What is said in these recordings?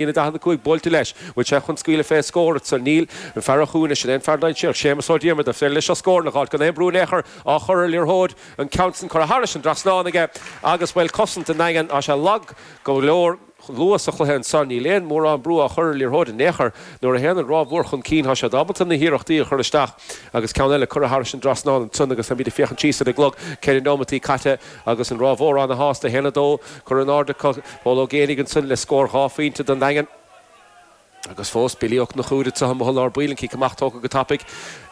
Líne 45 buailte leis, bhfuil sé chun scaoileadh fé scór agus níl an fear a chuaigh leis in aon fear dainséarach, Séamus Ó Diarmada, fé dhliseacht scór ina ghort gan aon brú in aon chor, á chur ar liathróid, an ceann san curtha tharais an dtrasnán aige agus, bhuel, cosaint an Daingin, tá sé lag go leor. Chomh luath sa chluiche ansan, níl aon mórán brú á chur ar liathróid in aon chor. Nuair a théann an Ráth Mhór chun cinn, tá siad ábalta na hiarrachtaí a chur isteach agus ceann eile curtha tharais an dtrasnán ansan agus táimid ag féachaint síos ar an gclog, ceithre neomataí caite, Agus an Ráth Mhór ana-shásta 1-2 curtha in airde acu, Pól Ó Géanaigh ansan le scór dhá phointe don nDaingean. Agus fós Billy Ó Cnochúir anseo amuigh i lár baill, an cic amach tógtha go tapaidh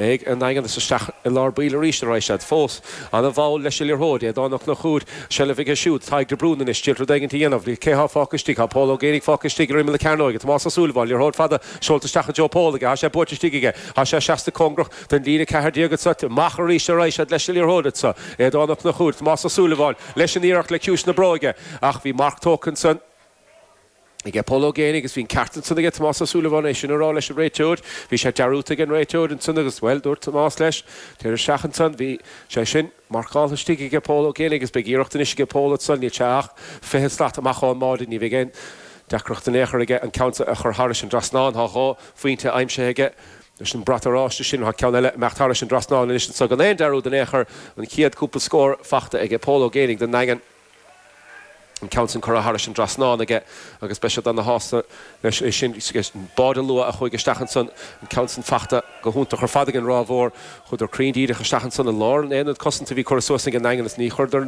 ag an nDaingean is isteach i lár baill arís a raghaidh siad. Fós ana-mhall leis an liathróid, Aodán Ó Cnochúir, seilbh aige siúd, Tadhg de Brún anois, ag d'iarraidh rud éigint a dhéanamh, cé thá fágtha istigh, tá Pól Ó Géanaigh fágtha istigh ar imeall na cearnóige, Tomás Ó Súilleabháin, liathróid fada seolta isteach i dtreo Pól aige, tá sé buailte istigh aige, tá sé seasta cóngarach, den líne ceathair déag anseo. Amach arís a raghaidh siad leis an liathróid anseo. Aodán Ó Cnochúir, Tomás Ó Súilleabháin leis an iarracht le ciumhais na bróige ach bhí marc tógtha ansan. aige Pól Ó Géanaigh agus bhí an ceart ansan aige Tomás Ó Súilleabháin é sin a rá leis an réiteoir. Bhí sé dearúdta ag an réiteoir ansan agus bhuel dúirt Tomás leis, téir isteach ansan. Bhí sé sin. Marcáilte istigh aige Pól Ó Géanaigh agus beidh iarracht anois aige Pól anso, níl sé ach fiche slat amach ó'n mbád, ní bheidh aon deacracht in aon chor aige an ceann a chur thairis an dtrasnán. Thá dhá phuínte aimsithe aige leis an brat oráiste sin. Thá ceann eile ag imeacht thairis an dtrasnán anois annso gan aon dearúd in aon chor. An chéad chúpla scór fachta aige Pól Ó Géanaigh don nDaingean. an ceann sin curtha thairis an dtrasnán aige agus beidh siad ana shásta leis é sin. Báide luath a chuaigh isteach ansan, an ceann san fachta go hiontach ar fad ag an Ráth Mhór. Chuadar cruinn díreach isteach ansan i lár an aonaid cosanta a bhí curtha suas ag an nDaingean is ní chuireadar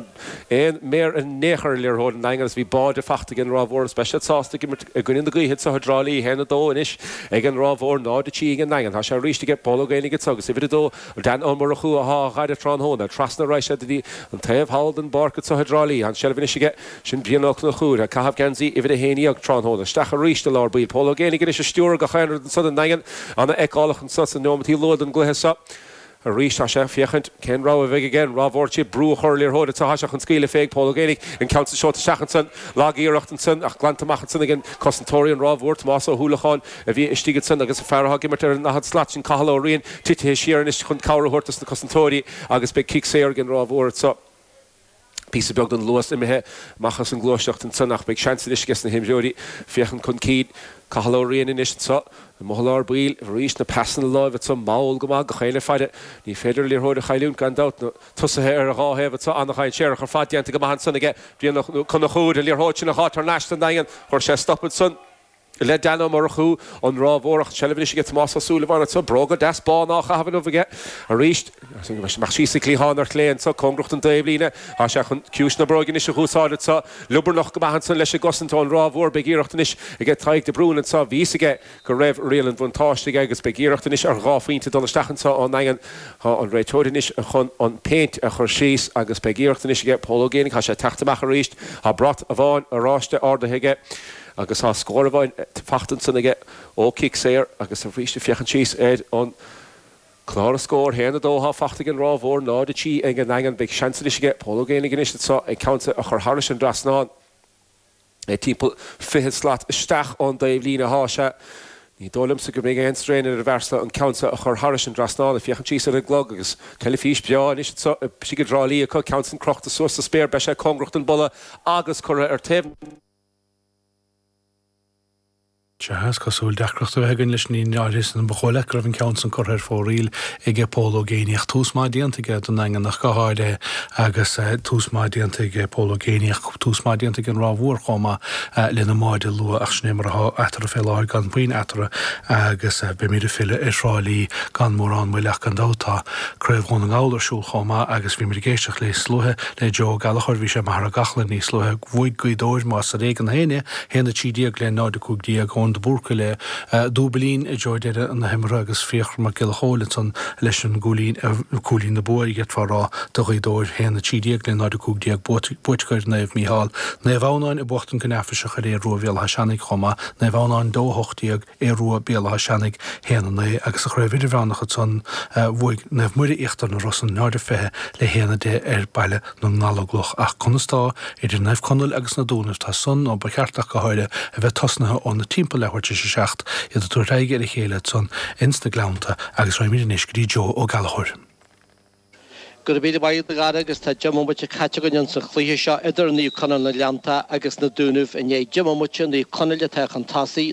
aon méar in aon chor ar an liathróid, an Daingean is bhí báide fachta ag an Ráth Mhór is beidh siad sásta ag imirt i gcoinne na gaoithe anseo i dTrá Lí. 1-2 anois ag an Ráth Mhór, 0-3 ag an nDaingean. Tá sé aríst aige, Pól Ó Géanaigh anseo agus uimhir a dó, Dan Ó Murchú athá á fhaire tráthnóna trasna a raghaidh siad ar an taobh thall den bpáirc anso i dTrá Lí. Tá an tseilbh anois aige. Sin Brian Ó Cnochúir ag caitheamh geansaí uimhir a haon dhéag tráthnóna. Isteach arís i lár baill. Pól Ó Géanaigh anois ag stiúradh gach aon rud ansan don nDaingean. Ana fheiceálach ansan sna neomataí luath den gcluiche seo. Arís tá sé ag féachaint cén rogha a bheidh aige. An Ráth Mhór ag d'iarraidh brú a chur ar liathróid ach thá sé chun scaoileadh fé ag Pól Ó Géanaigh. An ceann san seolta isteach ansan. Lag iarracht ansan ach glanta amach ansan ag cosantóirí an Ráth Mhóir Tomás Ó hUallacháin. a bhí istigh ansan agus an fear athá ag imirt ar an ndaichead slat sin, Cathal Ó Riain, titithe siar anois chun cabhair a thabhairt dos na cosantóirí agus beidh cic saor ag an Ráth Mhór anso. Píosa beag den luas imithe amach as an gluaisteacht ansan ach beidh seans anois ages na himreoirí féachaint chun cinn. Cathal Ó Riain anois anso amuigh i lár baill. Arís na pasanna láimhe anso mall go maith, gach éinne ag faire. Ní féidir an liathróid a chailliúint gan dabht. Na tosaithe ar an dá thaobh anso ana-dhainséarach ar fad. Déanta go maith ansan aige Brian Ó Conchúir. An liathróid sin a fháil thar n-ais don nDaingean. Chuir sé stop ansan. le Dan Ó Murchú, an Ráth Mhór ach seilbh anois aige Tomás Ó Súilleabháin anseo, bróga deas bána á chaitheamh anuas aige arís, amach síos sa chliathán ar chlé anseo, cóngarach don dtaobhlíne, tá sé chun ciumhais na bróige anois a dh'úsáid anseo, liobarnach go maith ansan leis an gcosaint ón Ráth Mhór, beidh iarracht anois aige Tadhg de Brún anseo, bhí 'fhios aige go raibh riail an bhuntáiste aige agus beidh iarracht anois ar dhá phointe dul isteach anseo ón nDaingean, tá an réiteoir anois chun an péint a chur síos agus beidh iarracht anois aige Pól Ó Géibheannaigh, tá sé ag teacht amach arís, tá brat amháin oráiste ardaithe aige. Agus tá scór amháin faighte ansan aige ó chic saor agus arís ag féachaint síos ar an clár na scór, 1, 2 atá faighte ag an Ráth Mhór, 0, 3 ag an nDaingean, beidh seans anois aige Pól Ó Géibheannaigh anois anso an ceann so a chur tharais an dtrasnán. Timpeall fiche slat isteach ón dtaobhlíne athá sé. Ní dóigh liomsa go mbeidh aon strain ar an bhfear so an ceann so a chur tharais an dtrasnán, ag féachaint síos ar an gclog agus teilifís breá anois anso istigh i dTrá Lí acu, ceann san crochta suas sa spéir, beidh sé cóngarach don bpolla agus curtha ar taobh na. Sea, is cosúil deacracht a bheith againn leis an líne leáighris in Ba dhóigh leat go raibh an ceann san curtha ar fóraoil aige Pól Ó Géibheannaigh ach tús maith déanta aige don Daingean ach go háirithe agus tús maith déanta aige Pól Ó Géibheannaigh ach tús maith déanta aige an Ráth Mhór chomh maith lena mbáide luath ach sin é mar atá eatarthu fé láthair gan puinn eatarthu agus beimid ag filleadh ar Thrá Lí gan mórán moille ach gan dabht tá Craobh Dhún na nGall ar siúl chomh maith agus bhíomar ag éisteacht níos luaithe Le Joe Ó Gallachóir Bhí sé i Machaire Gathlán níos luaithe bhuaigh Gaoth Dobhair más ar éigean féin é, 1, 13 le 0, 15, Eoin de Búrca le dúbailín i dtreo deireadh na himeartha agus Fiachra Mac Giolla Chóill ansan leis an gcúilín na bua a d'fhéadfá a rá do Ghaoth Dobhair, 1, 13 le 0, 15, buaite acu ar Naomh Mícheál, Naomh Adhamhnáin ag buachtaint go neafaiseach ar Aodh Ruadh Bhéal Átha Seanaigh chomh maith, Naomh Adhamhnáin 2, 18. Aodh Rua Béal Átha Seanaigh 1-9 agus sa chraobh idirmheánach ansan bhuaigh Naomh Muire Íochtar na Rosann 0-20 le 1-10 ar Baile na nGallóglach ach conas tá idir Naomh Conaill agus Na Dúnaibh tá san nó ba cheart ach go háirithe a bheith tosnaithe óna timpeall leathuair tar éis a seacht iad ag tabhairt aghaidh ar a chéile ansan ins na Gleannta agus raghaimid anois go dtí Joe Ó Gallachóir. Go raibh míle maith agat a Chárthaigh agus tá deich mbomaite caite againn insan chluiche seo idir Naomh Conaill na nGleannta agus Na Dúnaibh i ndiaidh deich mbomaite Naomh Conaill atá chun tosaigh